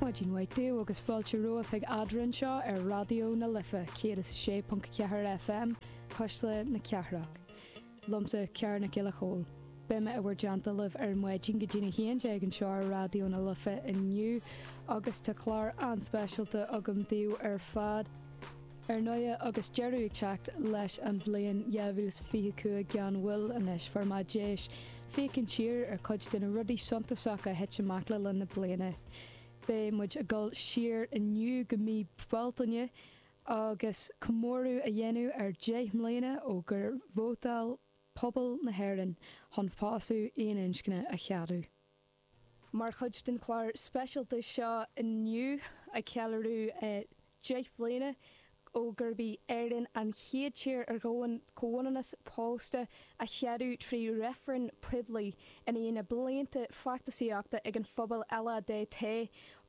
Maidin mhaith daoibh agus fáilte romhaibh chuig Adhradh anseo ar Raidió na Life 106.4 FM, Cuisle na Cathrach. Liomsa Ciarán Mac Giolla Chomhaill. Beidh mé i bhur dteannta ar maidin go dtí'n 11 anseo ar Raidió na Life inniu agus tá clár an-speisialta agam daoibh ar fad. Ar ndóigh, agus deireadh ag teacht leis an bhliain 2025 gan mhoill anois, fuair mé deis féachaint siar ar chuid de na rudaí suntasacha a thit amach le linn na bliana. Beidh muid ag dul siar inniu go mí Bealtaine agus comóradh á dhéanamh ar 10 mbliana ó gur vótáil pobal na hÉireann chun pósadh aon-inscne a cheadú. Mar chuid den chlár speisialta seo inniu, ag ceiliúradh deich mbliana ó gurb í Éirinn an chéad tír ar domhan comhionannas pósta a cheadú trí reifreann poiblí, i ndiaidh na blianta feachtasaíochta ag an phobal LADT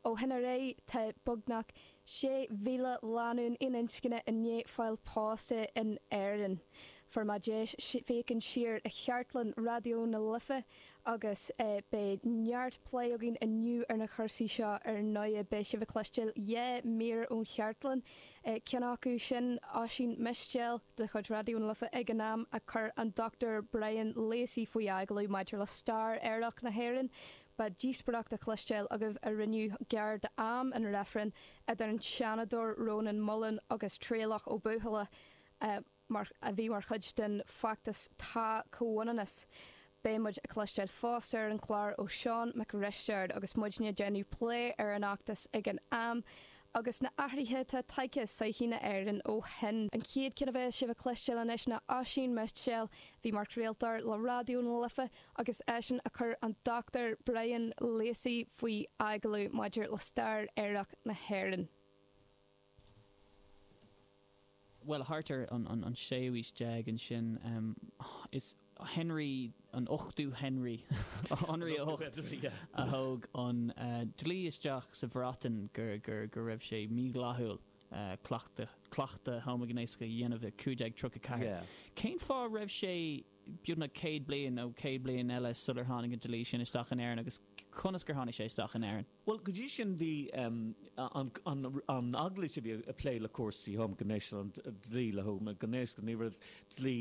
ó shin ar aghaidh, tá beagnach 6,000 lánúin aon-inscne i ndiaidh fáil pósta in Éirinn. Fuair mé deis féachaint siar ar chartlann Raidió na Life agus beidh neart plé againn inniu ar na cúrsaí seo. Ar ndóigh, beidh sibh ag cloisteáil dhá mhír ón chartlann, ceann acu sin Oisín Mistéil de chuid Raidió na Life ag an am a chuir an Dr Brian Lacey faoi agallamh maidir le stair aerach na hÉireann. Beidh díospóireacht le cloisteáil agaibh a rinneadh gar d'am an reifrinn idir an Seanadóir Rónán Mullen agus Traolach Ó Buachalla. a bhí mar chuid den feachtas 'Tá Comhionannas'. Beidh muid ag cloisteáil fosta ar an chlár ó Seán Mac Risteaird agus muid ag déanamh plé ar an fheachtas ag an am agus na athraithe atá tagtha i sochaí na h-Éireann ó shin. An chéad ceann a bheas sibh ag cloisteáil anois ná Oisín Mistéil a bhí mar chraoltóir le Raidió na Life agus eisean a chuir an Dr. Brian Lacey faoi agallamh maidir le stair aerach na hÉireann. bhuel, thart ar an séú aois déag ansin, is Henry, an ochtú Henry, Henri a hocht, a thóg an dlí isteach sa Bhreatain go raibh sé mídhleathúil cleachtadh homaighnéasach a dhéanamh i 1534. Cén fáth a raibh sé beagnach céad bliain nó céad bliain eile sular tháinig an dlí sin isteach in Éirinn agus conas gur tháinig sé isteach in Éirinn? Bhuel, go dtí sin bhí an eaglais, bhí ag plé le cúrsaí homaighné, an dlí le homaighnéasachas, ní raibh dlí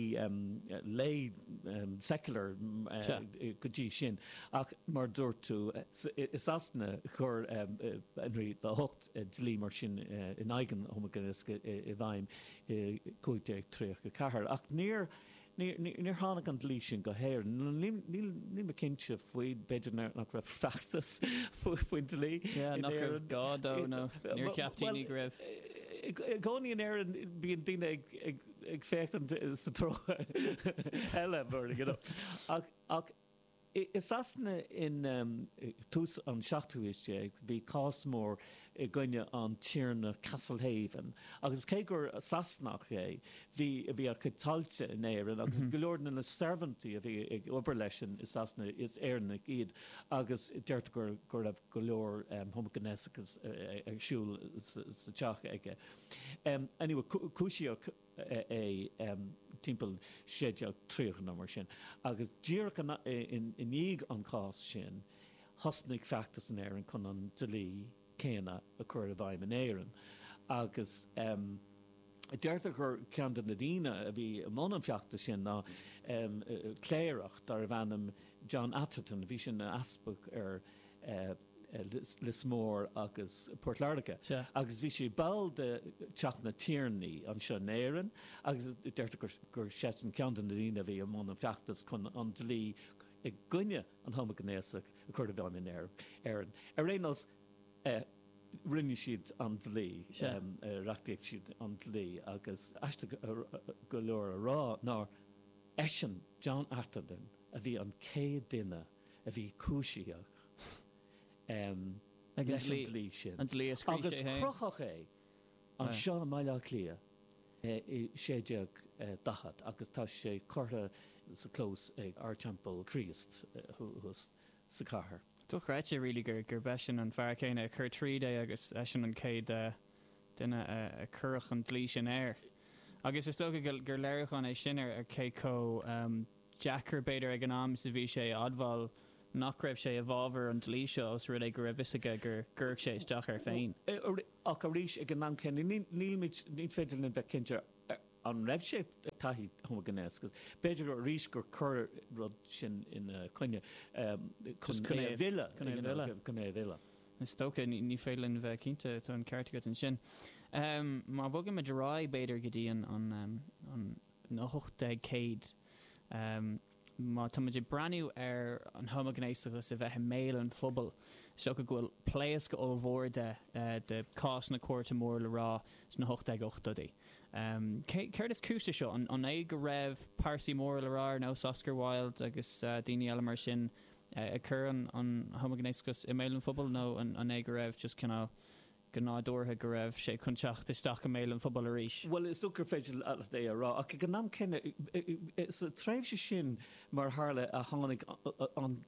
lay, secular, go dtí sin. Ach mar a dúirt tú, i Sasana chuir Henry a hocht dlí mar sin in aghaidh an homaighnéasachais i bhfeidhm i 1534 ach níor Níor tháinig an dlí sin go hÉireann. Níl mé cinnte faoi, b'fhéidir nach raibh feachtas faoin dlí in Éirinn. Nach raibh gá dó nó níor cheap daoine go raibh. Bhuel, i gcónaí in Éirinn bíonn daoine ag féachaint sa treo eile, you know, ach. I Sasana in tús an seachtú haois déag bhí cás mór i gcoinne an Tiarna Castlehaven agus cé gur Sasanach é bhí a chuid tailte in Éirinn agus go leor de na searbhóntaí a bhí ag obair leis i Sasana is Éireannaigh iad agus deirtear go raibh go leor homaighnéasachas ar siúl sa teach aige. Cúisíodh. é timpeall 1630 nó mar sin, agus díreach i ndiaidh an cháis sin, thosnaigh feachtas in Éirinn chun an dlí céanna a chur i bhfeidhm in Éirinn, agus deirtear gur ceann de na daoine a bhí i mbun an feachtais sin ná cléireach darbh ainm John Atherton, a bhí ina easpag ar. Lios Mór agus Port Láirge, agus bhí sé ball de Teach na Tiarnaí anseo in Éirinn, agus deirtear gur seisean ceann de na daoine a bhí i mbun an feachtais chun an dlí i gcoinne an homaighnéasaigh a chur i bhfeidhm in Éirinn. Ar aon nós, rinne siad an dlí, reachtaigh siad an dlí, agus aisteach go leor a rá ná eisean, John Atherton, a bhí an chéad duine a bhí cúisíoch leis an dlí sin agus crochadh é anseo i mBaile Átha Cliath i 1640 agus tá sé curtha sa chlós ag Ardteampall Chríost sa chathair. Dochreidte really gurb eisean an fear céanna a chuir tríd é agus eisean an chéad duine a cuireadh an dlí sin air. Agus is dócha gur léiriúchán é sin ar, ar cé chomh deacair, b'fhéidir, ag an am is a bhí sé a admháil nach raibh sé i bhfabhar an dlí seo os rud é go raibh 'fhios aige go gcuirfeadh sé isteach air féin. Ach arís, ag an am céanna, nílimid, ní féidir linn bheith cinnte an raibh sé ag taithí homaighnéas. B'fhéidir arís gur cuireadh an rud sin ina choinne chun é a mhilleadh, chun é a mhilleadh. Is dócha, ní féidir linn bheith cinnte, tá an ceart agat ansin. Má bhogaimid ar aghaidh, b'fhéidir, go dtí an. na 1800. Má táimid ag breathnú ar an homaighnéasachas a bheith i mbéal an phobail, is dócha go bhfuil pléasc ollmhór de, de chásanna cúirte mór le rá sna 1880idí. Céard is cúis le seo? An é go raibh pearsaí móra le rá ar nós Oscar Wilde agus daoine eile mar sin ag cur an homaighnéasachas i mbéal an phobail nó an é go raibh just cineál go nádúrtha go raibh sé chun teacht isteach i mbéal an phobail arís. Bhuel, is dócha gur féidir leat é a rá, ach ag an am céanna, sa tréimhse sin, mar a tharla, a tháinig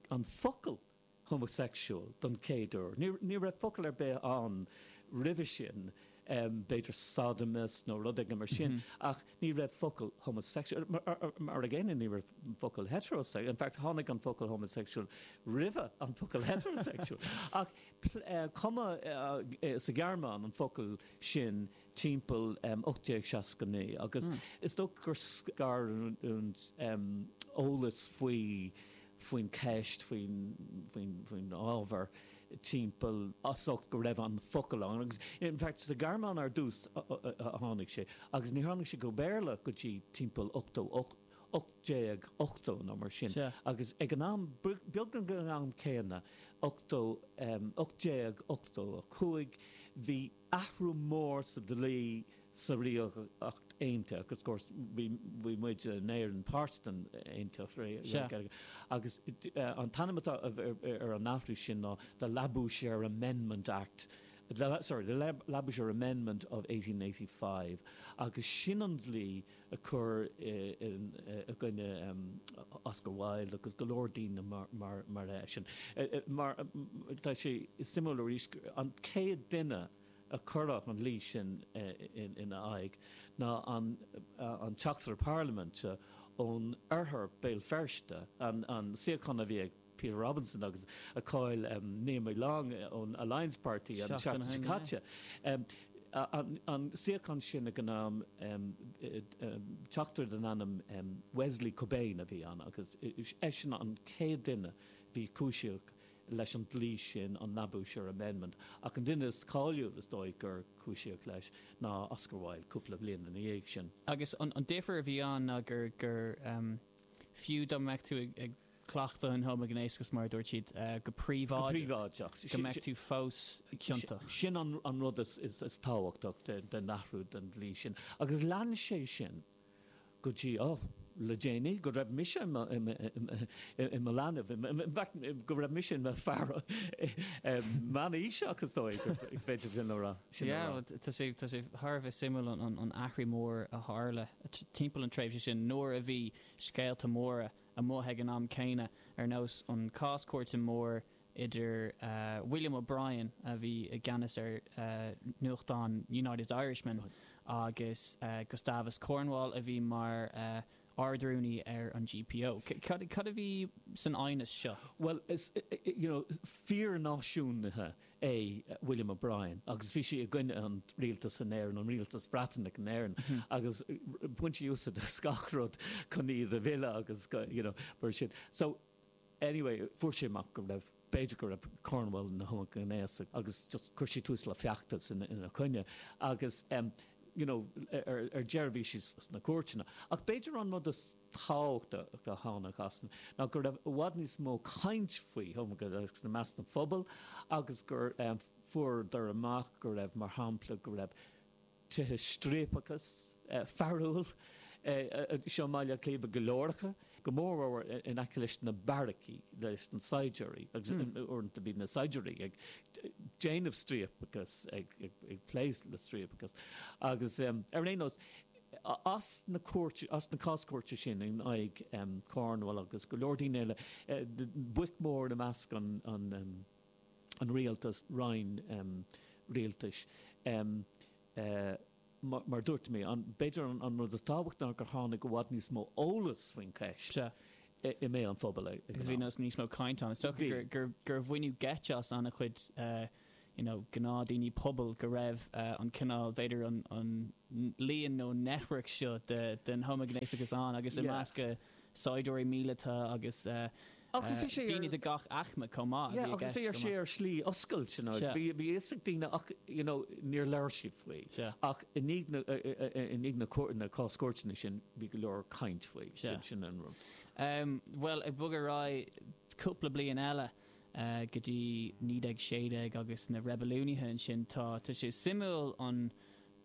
an focal homosexual don chéad uair. Ní raibh focal ar bith ann roimhe sin, b'fhéidir sodomist nó rud éigin mar sin, ach ní raibh focal homosexual, mar an gcéanna ní raibh focal heterosexual, in fact tháinig an focal homosexual roimhe an focal heterosexual. Ach. Cumadh sa Ghearmáin an focal sin timpeall 1869 agus is dócha gur scar an t-eolas faoi, faoin cheist, faoin, faoin, faoin ábhar timpeall as ucht go raibh an focal ann agus in fact sa Ghearmáin ar dtús a tháinig sé agus níor tháinig sé go Béarla go dtí timpeall ochtó ocht. 1880 nó mar sin, agus ag an am, beagnach ag an am céanna, 1885, bhí athrú mór sa dlí sa Ríocht Aontaithe, agus of course, bhí muid in Éirinn páirt den Aontacht, agus an t-ainm atá ar an athrú sin ná The Labouchere Amendment Act, sorry, The Labouchere Amendment of 1885, agus sin an dlí, a cuireadh i gcoinne Oscar Wilde agus go leor daoine mar eisean. Tá sé suimiúil arís gur an chéad duine a cuireadh an dlí sin ina aghaidh ná an teachtaire parlaiminte ó Oirthear Béal Feirste, an suíochán a bhí ag. Peter Robinson agus a chaill Naomi Long ón Alliance Party an seachtain seo caite. An suíochán sin ag an am teachtaire den ainm Wesley Cobain a bhí ann agus eisean an chéad duine a bhí cúisíodh leis an dlí sin, an Labouchere Amendment, ach an duine is cáiliúil is dóigh gur cúisíodh leis ná Oscar Wilde cúpla bhliain ina dhiaidh sin. Agus an difir a bhí ann ná gur fiú dá mbeadh tú ag. cleachtadh an homaighnéasachas, mar a dúirt siad, go príobháideach, go mbeadh tú fós ciontach. Sin an rud is tábhachtach den athrú den dlí sin. Agus lean sé sin go dtí, ó, le déanaí, go raibh mise i mo leanbh, in fact, go raibh mise i mo fear meánaoiseach, is dóigh, go bhféadfadh sin a rá. Yeah, tá sé thar a bheith suimiúil an athrú mór a tharla timpeall an tréimhse sin nuair a bhí scéalta móra, amuigh ag an am céanna, ar nós an cás cúirte mór idir William O'Brien, a bhí i gceannas ar nuachtán United Irishman, agus Gustavus Cornwall, a bhí mar Ard-Rúnaí ar an GPO. Cad a bhí san aighneas seo? Bhuel, is, you know, fíor-náisiúnaithe é William O'Brien agus bhí sé i gcoinne an Rialtas in Éirinn, an Rialtas Breatanach in Éirinn agus bhain sé úsáid as gach rud chun iad a mhilleadh agus go, you know, mar sin. So, anyway, fuair sé amach go raibh, b'fhéidir go raibh Cornwall ina homaighnéasach agus just chuir sé tús le feachtas ina choinne agus, you know, ar deireadh bhí sé sna cúirteanna. Ach b'fhéidir an rud is. tábhachtach a tháinig as sin ná go raibh i bhfad níos mó caint faoi homaighnéasacht i measc an phobail agus gur fuaireadar amach go raibh, mar shampla, go raibh tithe striapachais fearúil anseo i mBaile Átha Cliath, go leor acu, go mórmhór in aice leis na beairicí, leis na saighdiúirí agus uaireanta bhí na saighdiúirí ag déanamh striapachas, ag plé le striapachas agus ar aon nós, As na cúirteanna, as na cás cúirte sin in aghaidh Cornwall agus go leor daoine eile, boic mhóra i measc an rialtas, roinn rialtais, mar dúirt mé, b'fhéidir an rud is tábhachtaí ná gur tháinig i bhfad níos mó eolas faoin cheist i mbéal an phobail ag an am. Agus bhí níos mó cainte ann. Is dócha gur baineadh geit as an-chuid you know, gnáthdhaoine pobail go raibh an cineál, b'fhéidir, an líon nó network seo den homaighnéasachas ann agus i measc saighdiúirí míleata agus daoine de gach aicme chomh maith a bhí i gceist. Agus bhí sé, ar shlí oscailt, you know, bhí a fhios ag daoine ach, you know, níor labhair siad faoi. Ach i ndiaidh na cás cúirteanna sin bhí go leor caint faoi, sin an rud. Bhuel, ag bogadh ar aghaidh cúpla bliain eile, go dtí 1916 agus na reibiliúnaithe ansin. Tá, tá sé suimiúil an,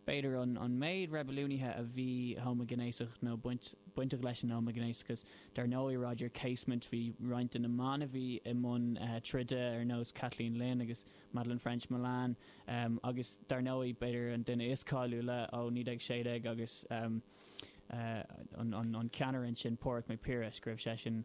b'fhéidir, an méid reibiliúnaithe a bhí homaighnéasach nó bainteach leis an homaighnéasachas. Dar ndóigh, Roger Casement, bhí roinnt de na mná a bhí i mbun troide, ar nós Kathleen Lynn agus Madeleine ffrench-Mullen, agus dar ndóigh, b'fhéidir, an duine is cáiliúla ó 1916 agus an ceannaire ansin, Pádhraic Mac Piarais, go raibh seisean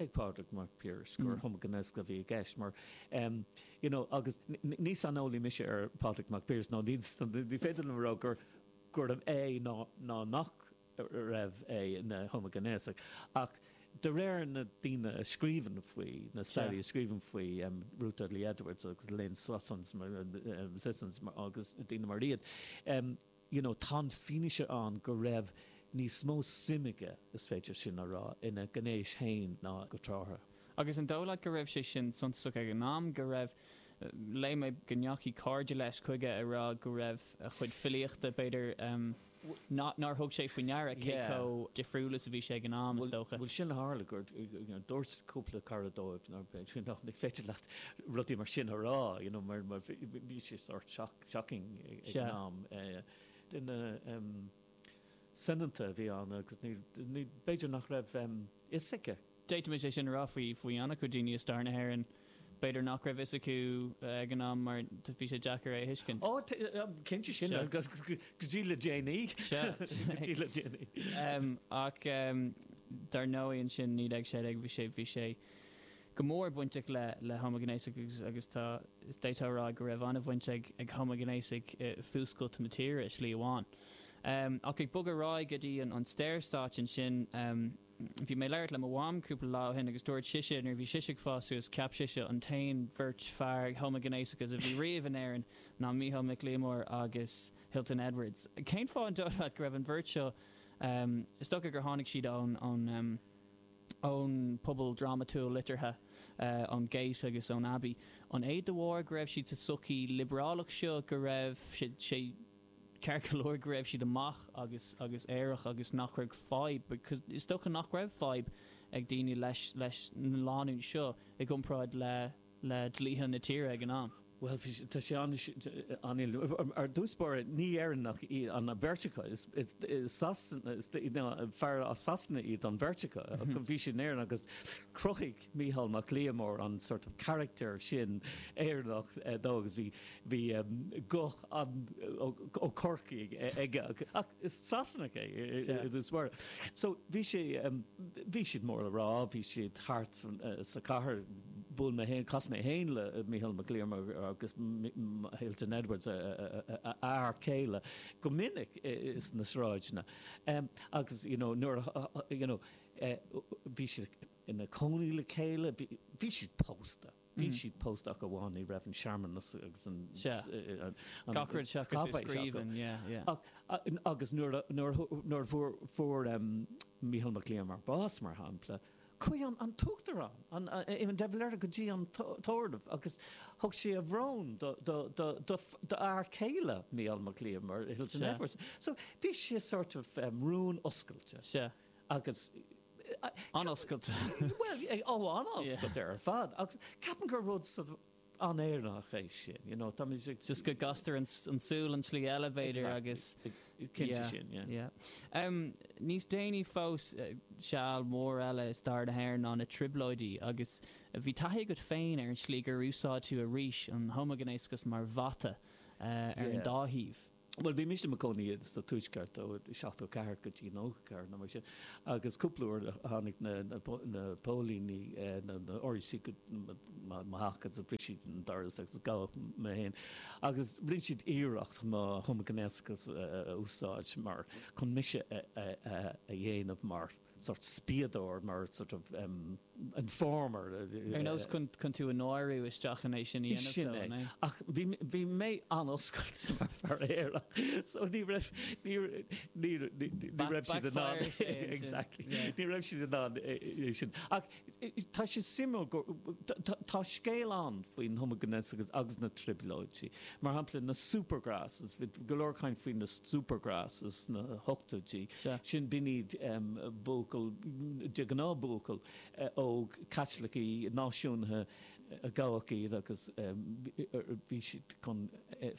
ag Pádraig Mac Piarais gur homaighnéasach a bhí i gceist mar you know agus ní saineolaí mise ar Phádraig Mac Piarais nó ní féidir liom a rá gur gurbh é nó ná nach raibh é ina homaighnéasach ach de réir na daoine a scríobhann faoi, na staraithe a scríobhann faoi, Ruth Dudley Edwards agus Elaine Sisson agus daoine mar iad. you know tá an fianaise ann go raibh níos mó suim aige, is féidir sin a rá, ina ghnéis féin ná go tráth. Agus an dóigh leat go raibh sé sin suntasach ag an am, go raibh, léigh mé go ndeachaigh cairde leis chuige ag rá go raibh a chuid filíochta, b'fhéidir, not, nár thug sé faoi ndeara cé chomh difriúil is a bhí sé ag an am, is dócha. Bhuel sin a tharla, gur, you know dúirt cúpla cara dóibh nár, you know ní féidir leat rudaí mar sin a rá, you know mar bhí sé sórt shock. shocking ag an am. Duine soineanta a bhí ann agus b'fhéidir nach raibh fhios aige. D'fhéadfaimis é sin a rá faoi ana chuid daoine i stair na hÉireann. B'fhéidir nach raibh fhios acu ag an am mar bhí sé deacair é a thuiscint. Ó, cinnte sin agus go dtí le déanaí. Ach dar ndóigh ansin 1916 bhí sé, bhí sé. go mór bainteach le homaighnéasaigh agus tá, d'fhéadfá a rá, go raibh an-bhaint ag homaighnéasaigh i bhfuascailt na tíre i slí amháin. Ach ag bogadh ar aghaidh go dtí an Saorstát ansin, bhí mé ag labhairt le mo mham cúpla lá ó shin agus dúirt sise nuair a bhí sise ag fás suas, cheap sise an t-aon bheirt fear homaighnéasacha a bhí riamh in Éirinn ná Micheál Mac Liammóir agus Hilton Edwards. Cén fáth, an dóigh leat, go raibh an bheirt seo, is dócha gur tháinig siad ón. ón bpobal drámatúil liteartha, ón Gate agus ón Abbey. An é de bharr go raibh siad sa tsochaí liobrálach seo go raibh sé ceart go leor go raibh siad amach agus agus aerach agus nach raibh fadhb, is dócha nach raibh fadhb, ag daoine leis na lánúin seo i gcomparáid le. le dlíthe na tíre ag an am. Bhuel, tá sé an-, i dtús báire, ní Éireannaigh iad an bheirt acu, is fir as Sasana iad an bheirt acu, bhí siad in Éirinn agus chruthaigh Micheál Mac Liammóir an sort of character sin Éireannach dó agus bhí guth an, ó Chorcaigh aige. Is Sasanach é i dtús báire. So, bhí sé, bhí siad mór le rá, bhí siad thart sa cathair, bhuail mé fhéin, chas mé fhéin le Micheál Mac Liammóir agus Hilton Edwards, a fhear céile, go minic sna sráideanna agus, you know, nuair a, you know, bhí siad ina cónaí le chéile, bhí siad pósta. Bhí siad pósta ach amháin ní raibh an searmanas agus an Gach rud seachas i scríbhinn, yeah, yeah. Agus nuair a fuair Micheál Mac Liammóir bás, mar shampla, chuaigh an tUachtarán, Éamon de Valera, go dtí an tórramh agus thug sé a bhrón d'fhear céile Micheál Mac Liammóir, Hilton Edwards. So bhí sé sort of rún oscailte. An-oscailte. Bhuel, tá, an-oscailte ar fad agus ceapaim gur rud sort of an-Éireannach é sin, you know, tá muid ag. Just go gcastar an tsúil an tslí eile b'fhéidir agus. Exactly. Cinnte sin, yeah. Yeah. Níos déanaí fós, seal mór eile i stair na hÉireann ná na Trioblóidí agus bhí taithí agat féin ar an tslí gur úsáideadh arís an homaighnéasachas mar bhata ar an dá thaobh. Bhuel, bhí mise i mo chónaí sa Tuaisceart ó 74 go dtí 94 nó mar sin agus cúpla uair a tháinig na póilíní, na RUC chuig mo theach agus bhris siad an doras agus gabhadh mé féin agus rinne siad iarracht mo homaighnéasachas a úsáid mar, chun mise a dhéanamh mar. sórt spiadóir, mar sort of informer. Ar nós chun tú a náiriú isteach in é sin a dhéanamh dó, Sin é. an é? Ach bhí, bhí mé an-oscailte mar fear aerach, so ní raibh, ní, ní, ní raibh siad in ann, exactly, ní raibh siad in ann é sin. Ach Tá sé suimiúil go, tá scéal ann faoin homaighnéasachas agus na trioblóidí, mar shampla na Supergrass, bhí go leor caint faoi na Supergrass sna hochtóidí, sin, b'in iad buachaillí, de ghnáth buachaillí óga Caitliceacha, náisiúnaithe a gabhadh iad agus bhí siad chun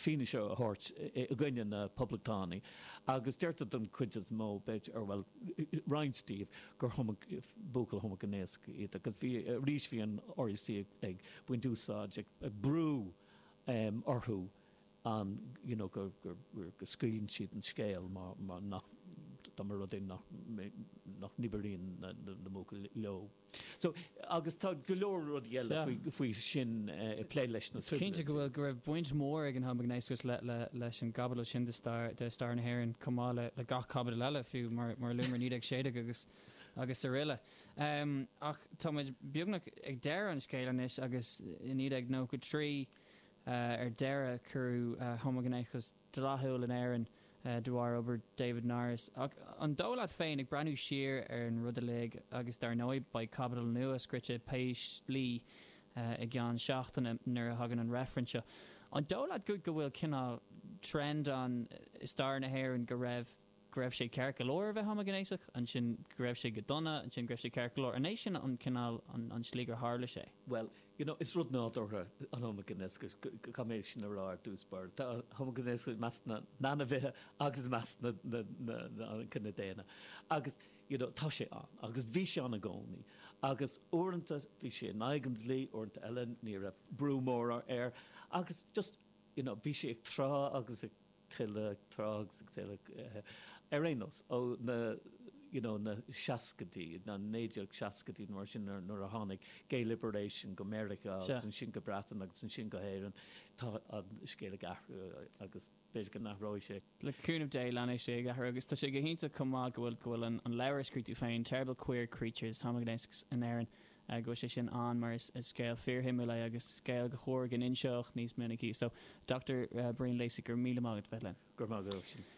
fianaise a thabhairt i gcoinne na poblachtánaigh agus deirtear don chuid is mó, b'fhéidir, bhuel roinnt díobh, gur buachaillí homaighnéasach iad agus bhí, arís bhí an RUC ag baint úsáid, ag brú orthu an, you know, go scaoileann siad an scéal mar nach, dá mba rud é nach, nach n-oibríonn na buachaillí leo. So. Agus tá go leor rudaí eile faoi sin ag plé leis na Trioblóidí. Cinnte go raibh baint mhór ag an homaighnéasachas leis an gcaibidil sin de stair na hÉireann, chomh maith le gach caibidil eile, fiú, mar a luamar, 1916 srl. Ach táimid beagnach ag deireadh an scéil anois agus i 1993 ar deireadh rinneadh homaighnéasachas dleathúil in Éirinn de bharr obair David Norris. Ach an dóigh leat féin, ag breathnú siar ar an rud uilig, agus dar ndóigh beidh caibidil nua scrite pé slí i gceann seachtaine nuair a thagann an reifreann seo, an dóigh leat go bhfuil cineál trend ann i stair na hÉireann go raibh. go raibh sé ceart go leor a bheith homaighnéasach, ansin go raibh sé go dona, ansin go raibh sé ceart go leor. An é sin an cineál, an tslí gur tharla sé? Bhuel, you know, is rud nádúrtha an homaighnéasachas, caithfidh mé sin a rá ar dtús báire. Tá an homaighnéasachas i measc na n-ainmhithe agus i measc an chine daonna agus, you know, tá sé ann agus bhí sé ann i gcónaí agus uaireanta bhí sé in aghaidh an dlí, uaireanta eile ní raibh brú mór air agus just, you know, bhí sé ag trá agus ag. tuilleadh tráth agus ag tuilleadh, ar aon nós, ó na, you know, na seascaidí, na naoi déag seascaidí nó mar sin nuair, nuair a tháinig Gay Liberation go Meiriceá agus ansin go Breatain agus ansin go hÉireann, tá an scéal ag athrú agus b'fhéidir go n-athróidh sé. Le cúnamh Dé leanfaidh sé ag athrú agus tá sé go hiontach chomh maith go bhfuil, go bhfuil an, an leabhar a scríobh tú féin, Terrible Queer Creatures, homaighnéas in Éirinn, go bhfuil sé sin ann mar is scéal fíorshuimiúil é agus scéal gur chóir go n-inseodh níos minicí. So, Dochtúir Brian Lacey, go raibh míle maith agat bheith linn. Go raibh maith agat freisin.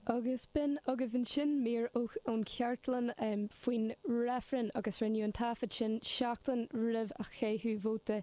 Agus b'in agaibh ansin mír ón chartlann faoin reifreann agus rinneadh an taifead sin seachtain roimh a caitheadh vóta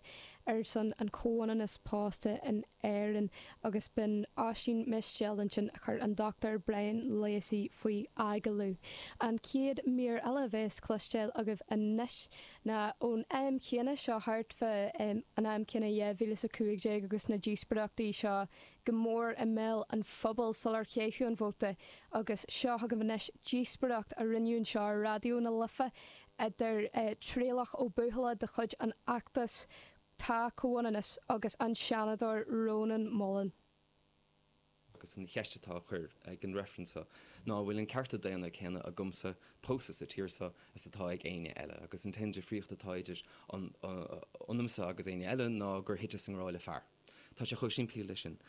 ar son an chomhionannas pósta in Éirinn, agus b'in Oisín Mistéil ansin a chuir an Dr Brian Lacey faoi agallamh. An chéad mír eile a bhéas cloisteáil agaibh anois ná ón am chéanna seo thart fá an am céanna 2015 agus na díospoireachtaí seo go mór i mbéal an phobail sular caitheadh an vóta agus seo chugaibh anois díospoireacht a rinneadh anseo ar Raidió na Life idir Traolach Ó Buachalla de chuid an Fheachtais Tá Comhionannas agus an Seanadóir Rónán Mullen. Agus an cheist atá á chuir ag an reifreann seo ná an bhfuil an cearta daonna céanna agamsa pósadh sa tír seo is atá ag éinne eile. Agus an t-aon difríocht atá idir ionamsa agus éinne eile ná gur thiteas i ngrá le fear. Tá sé chomh simplí le sin.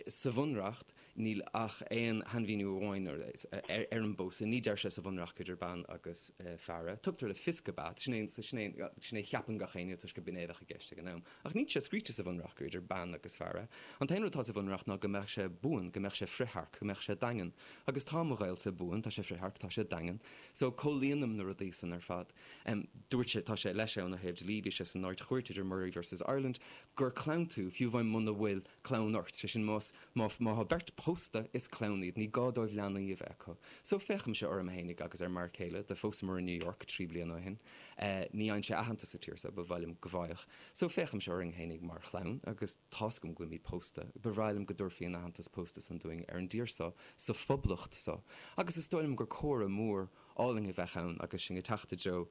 Sa Bhunreacht. Níl ach aon shainmhíniú amháin ar an bpósadh. Ní deir sé sa Bhunreacht idir bean agus fear é. Tugtar le fios gurb ea, sin é a cheapann gach éinne toisc gur b'in é a bheadh i gceist ag an am, ach níl sé scríte sa Bhunreacht gur idir bean agus fear é. An t-aon rud atá sa Bhunreacht ná go mbeadh sé buan, go mbeadh sé frithearc, go mbeadh sé daingean. Agus tá mo ghaolsa buan, tá sé frithearc, tá sé daingean. So, comhlíonaim na rudaí san ar fad. Dúirt sé, tá sé, leis é óna thaobh dlí, bhí sé san Ard-Chúirt idir Murray versus Ireland, gur clann tú, fiú amháin muna bhfuil clann ort, sé sin más, Má tá beirt pósta is clann iad, ní gá dóibh leanaí a bheith acu. So féachaimse orm fhéinig agus ar m'fhear céile, do phósamar in New York trí bliana ó shin. Ní fhaigheann sé aitheantas sa tír so ba mhaith liom go bhfaigheadh. So féachaimse orainn fhéinig mar chlann agus tá's agam go bhfuilimid pósta. Ba bhreá liom go dtabharfaí an aitheantas pósta san dúinn ar an dtír so, sa Phoblacht so. Agus is dóigh liom gur comóradh mór álainn a bheadh ann agus sinn ag teacht i dtreo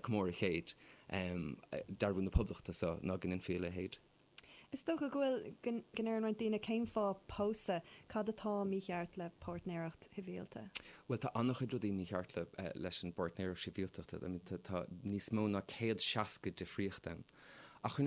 comóradh chéid dearbhú na Poblachta so ná go ndéanfaí a leithéid. Is dócha go bhfuil, go ndeireann roinnt daoine cén fáth pósadh, cad atá mícheart le páirtnéireacht shibhialta? Bhuel tá an-chuid rudaí mícheart le, leis an bpáirtnéireacht sibhialtachta, tá níos mó ná céad seasca difríocht ann. Ach, ar na,